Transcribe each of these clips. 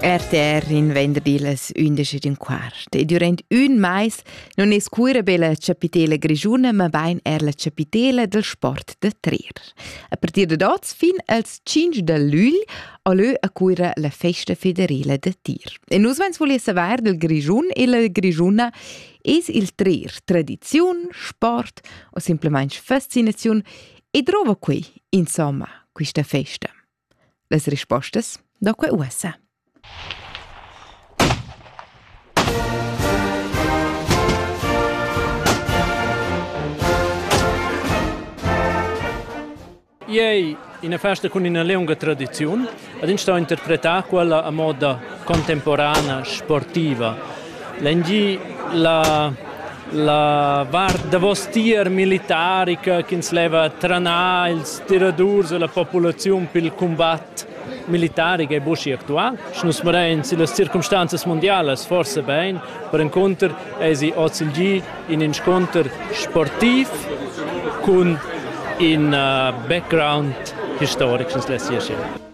RTR in venderdi las 11 d'un quart. E durant un mais non es cuira be la chapitela grigiuna, ma bain er la chapitela del sport da trer. A partir de oz fin als 5 de lügl a lö a cuira la festa federela da tir. E nus vens volia saver del grigiun e la grigiuna es il trer tradiziun, sport o simplemente fascinazione e drova qui, insomma, questa festa. Las rispostas da quei ussa. Ei ina festa cun ina leunga tradiziun, ad ins sto interpretar quella a moda contemporana, sportiva. Lengi la, la vart davos tier militarica ch'ins leva tranar ils tiradurs e la populaziun pil combat militaric è busi actual. Sche nus mirain si las circumstanzas mondialas forse bein, per encontrer esi oz il gi in inscontr sportiv cun in uh, background historic, ch'ins lessia scher.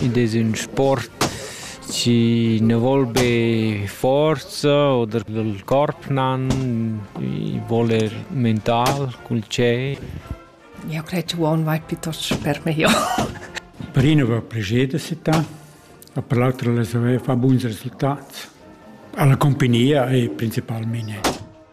Id es ün sport chi nu voul be forza oder il corp nan, i voul er mental cul tschei. Eu cret che uonn vai piuttost per meglio. Per ina va plager da settà, e per l'autra la saver far buns resultats. Alla compagnia e principalmente.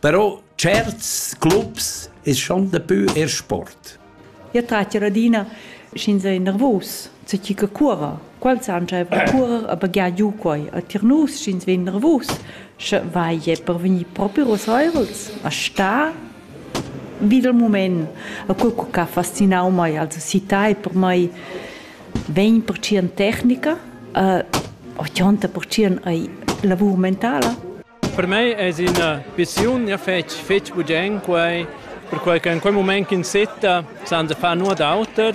Però tscherts clubs es schon dapü eir sport. Io trat ir adina sch'ins ei nervus, co chi che cuora. Quels han giaiva a curer e baghiar giu quai. E tier nus, sch'ins vegn nervus, sche vai jeu per vegnir propi rusaivels a star vi dal mument. E quel che ha fascinau mei, also citai per mei vegn per tschien tecnica e ochonta per tschien ei lavur mentala. Per mei es ina pissiun ja fetg fetg bugen quei, perquai che in quei mument ch'in setta san da far nuot auter,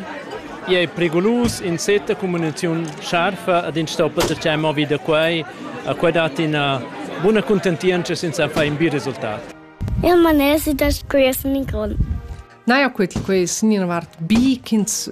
i ei periclus, in setta cummuniziun scharfa ad in stoppa da tschei movi da quei, a quei dat ina buna cuntentientscha senza far in bi resultat. Eu manesi da scuir sin il grond. Naja, quei quei sin ina vart bi ch'ins